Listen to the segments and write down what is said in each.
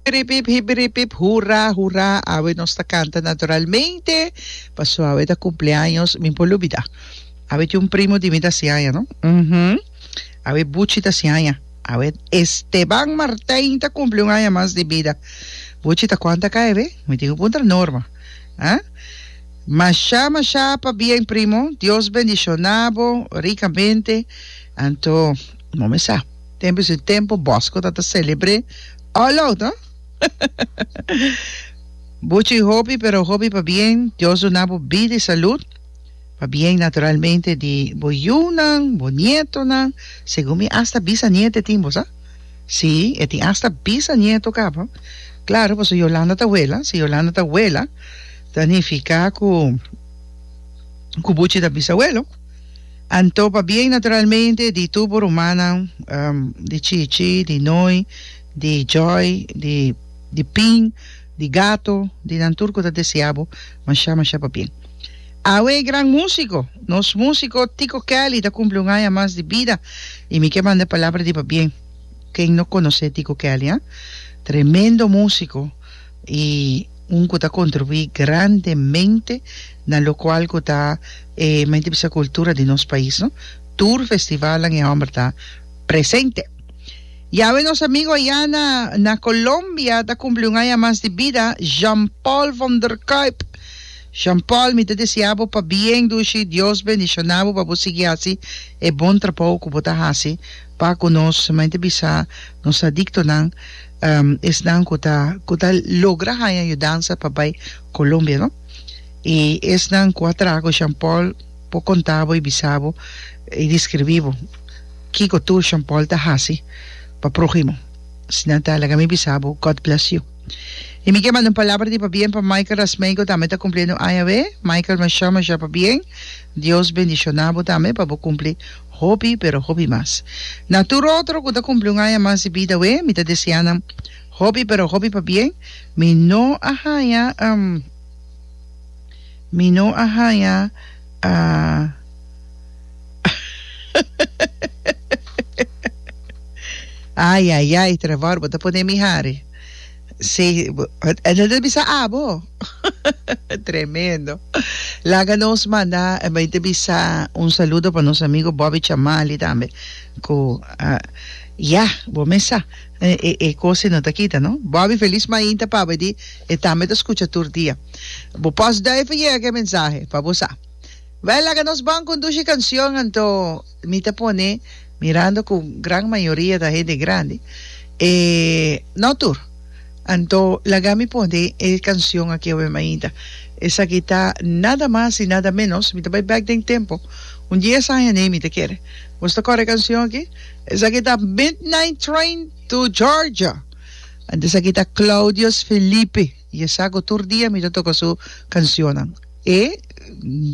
Hibiripip hibiripip hura hura awe nos ta canta naturalmente paso awe ta cumpleaños mi por lubida awe tin un primo di mi ta si aña no uh huh awe buchi ta si aña awe Esteban Martin ta cumpli un aña mas di bida buchi ta cuanta cay awe mi tin cu puntra Norma ah masha masha pa bien primo Dios bendicionabo ricamente anto momen sa. Tempu su tempu Bosco ta ta celebre all out ha Buchi hopi pero hopi pa bien Dios duna bo bida y salud pa bien naturalmente di bo yunan bo nietonan segun mi hasta bisaniete tin bo sa si e tin hasta bisanieto caba claro paso Yolanda ta wela si Yolanda ta wela ta nifica cu cu Buchi ta bisabuelo. Anto pabia i naturalmente di tur bo rumannan, di Chichi, di Noi, di Joy, di di Pin, di Gato, di nan tur ku ta deseá bo mashá mashá pabien. Awe e gran músiko, nos músiko Tiko Kelly ta kumpli un aña mas di bida i mi ke manda palabra di pabien. Ken no konosé Tiko Kelly, ha? Tremendo músiko. y un cu ta contribui grandemente na locual cu ta e menti bisa cultura di nos pais no tur festivalnan e homber ta presente yawe nos amigo aya na na Colombia ta cumpli un aña mas di bida Jean Paul von der Kuip Jean Paul mi ta desea bo pa bien dushi Dios bendiciona bo pa bo sigui haci e bon trabou cu bo ta haci pa cu nos menti bisa nos adictonan esnan cu ta cu ta logra haña yu danza pa bay Colombia no y esnan cu a traha cu Jean Paul por conta bo y bisa bo y describi bo kico tur Jean Paul ta haci pa prohimo si nan ta laga mi bisa bo God bless you y mi ke manda un palabra di pabien pa Michael Rasmey cu tambe ta cumpliendo aña awe Michael masha masha pabien Dios bendiciona bo tambe pa bo cumpli Hopi, pero hopi mas. Na tur otro cu ta cumpli un aña mas di bida we, mi ta desea nan hopi, pero hopi pa bien. Mi no a haña, um, mi no a haña, ah, Ayayay, trabor, bo ta pone mi hari. Sí, e ta ta bisa abo. Tremendo. Laga nos manda, e bai ta bisa un saludo pa nos amigo Bobby Chamali tambe, cu a ya, bo mesa, e e e cosi no ta kita, no. Bobby, feliz mainta paba di, e tambe ta scucha tur dia. Bo postduiven yega cu e mensahe, pa bo sa. Bel, laga nos ban conduci cancion anto. Mi ta pone, mirando cu gran mayoria ta hende grandi, e no tur. Anto laga mi pone e cancion aki awe mainta. Esaki ta nada mas y nada menos, mi ta bay back den tempo, un dies aña nee mi ta kere. Nos ta core e cancion aki? Esaki ta Midnight Train to Georgia. Anto esaki ta Claudius Felipe. I e sa ku tur dia mi ta toka su kansionnan. E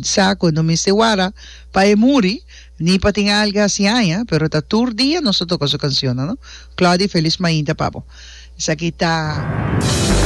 sa ku no mester wara pa e muri, ni pa tin alga hasi aña, pero ta tur dia nos ta toka su kansionnan, no? Claudy, felis mainta pa bo. Esaki ta.